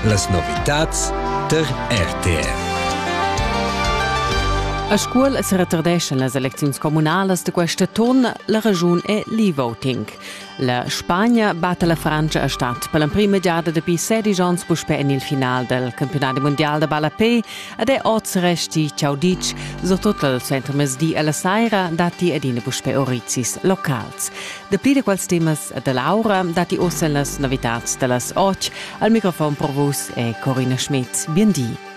Las novitads tar RTR. A Scuol se retardeschan las elecziuns communalas de questa ton, la regiun è l'e-voting. La Spagna batte la Francia a Stadt per l'emprima giada dapi 16 ans puspè en il final del campionat mondial de ballapé ed è oz resti ciaudic, soprattutto al centro mesdi alla saira datti adina puspè orizis locals. Dapi da quels temas da Laura datti ossa las novitads da las otg. Al microfon per vus è Corina Schmidt. Bien di.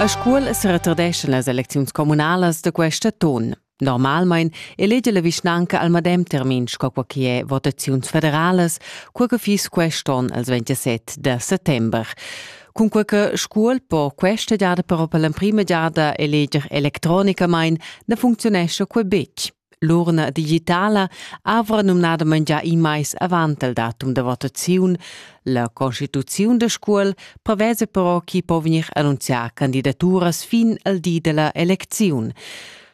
A Scuol se retardeschan las elecziuns comunalas da questa ton. Normalmein elege la vischnanca al medem termin sco qua che è votaziuns federalas, qua che fiss quest'on als 27 da settember. Cunquei che Scuol po questa giada però per l'emprima giada eleger electronicamain na funcziunescha quei betg. L'urna digitala avra numnadamain già in mais avant il datum da votaziun. La constituziun da Scuol prevesa però chi po vegnir annunzià candidaturas fin al di della elecziun.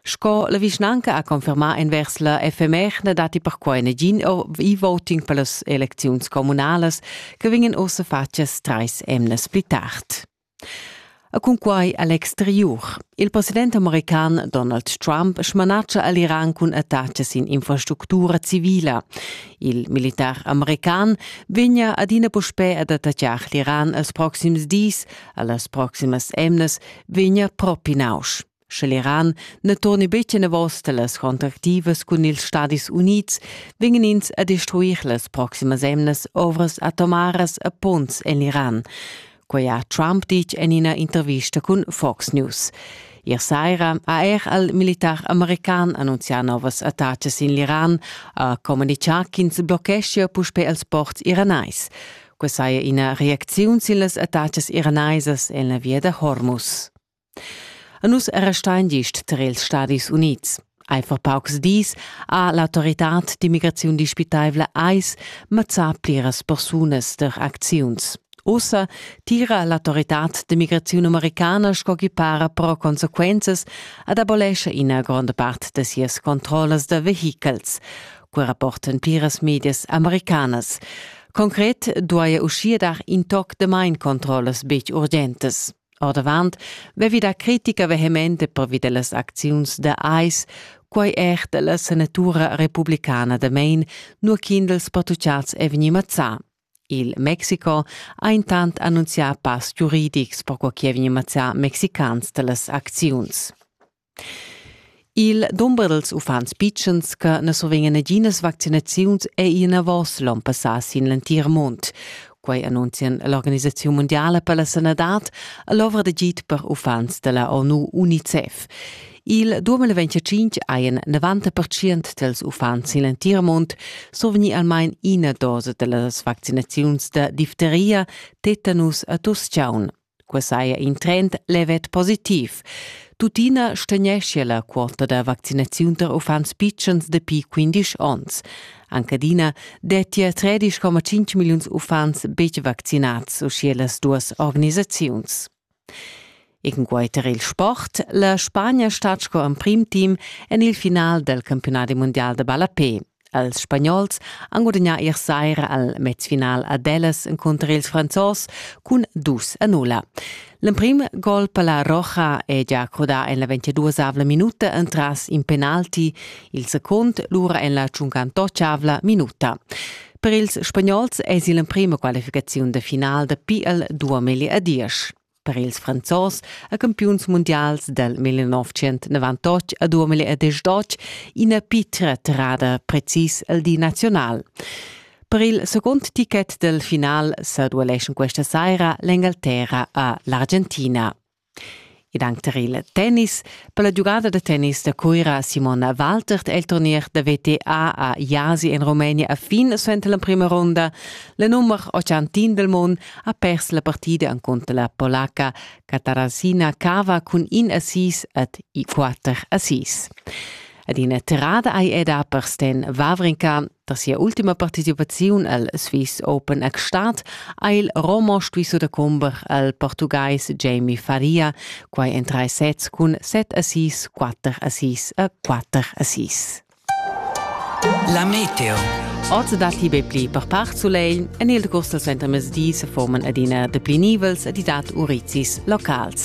Sco la vischnanca ha confermà envers la FMR datti perquai nagin e-voting per las elecziuns communalas che vegnan ussa fatgas trais emnas pli tard. E cunquai a l'exteriur. Il president american Donald Trump smanatscha a l'Iran cun attacks in infrastructura civila. Il militar american vegna adina puspè ad attaccar l'Iran els proxims dis, a las proximas emnas vegna propi nausch. Sche l'Iran na torni betg enavos da las contractivas cun ils Stadis Unids, vegnan ins a destruir las proximas emnas ovras atomaras a ponns en l'Iran. Quai ha Trump ditg en ina intervista cun Fox News. Ier saira ha er al militar american annunzià novas attacas in l'Iran, ha communitgà ch'ins bloccheschia puspè els ports iranais. Quai saja ina reacziun sin las attacas iranaisas en la via da Hormuz. A nus restain gist tar ils Stadis Unids. Eifer paucs dis ha l'autoritad d'immigraziun dispitaivla AIS mazzà pliras persunas der acziuns. Ussa tira l'autoritad d'immigraziun americana sco chi para però consequenzas ad abolescha ina gronda part da sias controllas da vehichels, quai rapportan pliras medias americanas. Concret duaja uschia dar in toc de main controllas betg urgentes. Ordavant vevi da critica vehemente pervi dellas acziuns da AIS, quai er della senatura republicana da Maine, nur kindels pattucciats è vegni mazzà. Il Mexico ha intant annunzià pass giuridics per quo chi è vegni mazzà mexicans dellas acziuns. Il dumber dals uffants pitschens che na survegnan naginas vaccinaziuns è ì enavos l'onn passà sin l'entir mund. Quai annunzian l'Organisaziun mundiala per la sanadad e l'ovra d'agid per uffants da la ONU UNICEF. Il 2025 hajan 90% dals uffants sin l'entir mund survegnì almain ina dosa da las vaccinaziuns da difteria, tetanus e tuss-chaun. Quai saja in trend levet positiv. Tuttina stegneschia la quota da vaccinaziun tar uffants pitschens dapi 15 onns. Anche adina dettia 13,5 milliuns uffants betg vaccinads uschia las duas organisaziuns. Egenquai tar il sport, la Spagna stat sco emprim team en il final dal campiunadi mundial da ballapè. Els spagnols han gudagnà ier saira al mezfinal ad Ellas encunter ils Franzos cun dus a nulla. L'emprim gol per la Roja è già crudà en la 22-avla minuta entras in penalti, il secund lura en la 58-avla minuta. Per ils spagnols è il emprima qualificaziun de final de PL 2010. Per ils Franzos ha campiuns mundials dal 1998 a 2018 ina pitra tirada precis al di nazional. Per il secund ticket del final sa dueleschan questa saira l'Engalterra a l'Argentina. Ed anche per il tennis, Per la giugada da tennis da Cuira Simona Waltert è il turnier da VTA a Jasi en Rumenia a fin suenter l'emprima ronda. La nummer 81 del mond ha pers la partida encunter la polaca Katarasina Kava cun in assist et i 4 assist. Ed ina tirada ei eda per Sten Wawrinka da sia ultima participaziun al Swiss Open a Gstaad ha il Romo stuiso da comber al portugais Jamie Faria, quai en tre sets cun 7 assist, 4 assist e 4 assist. La meteo. Oz datti be pli per part sulegl. En il agost al suentermezdi se forman adina depli nivels ed dat urizis locals.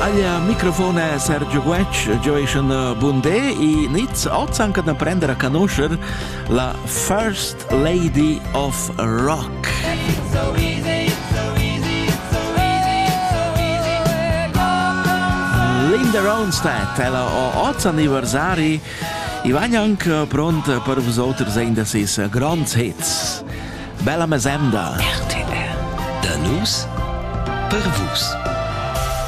Aglia microfone Sergio Guetg gioischan bundé i nits ozan can prender a conoscer la First Lady of Rock. It's so easy, it's so easy, it's so easy, it's so easy. Linda Ronstadt, ella o oz anniversari, i va anche pronta per vos oters ein da ses grands hits. Bella mesemda! RTL. Da nus per vus.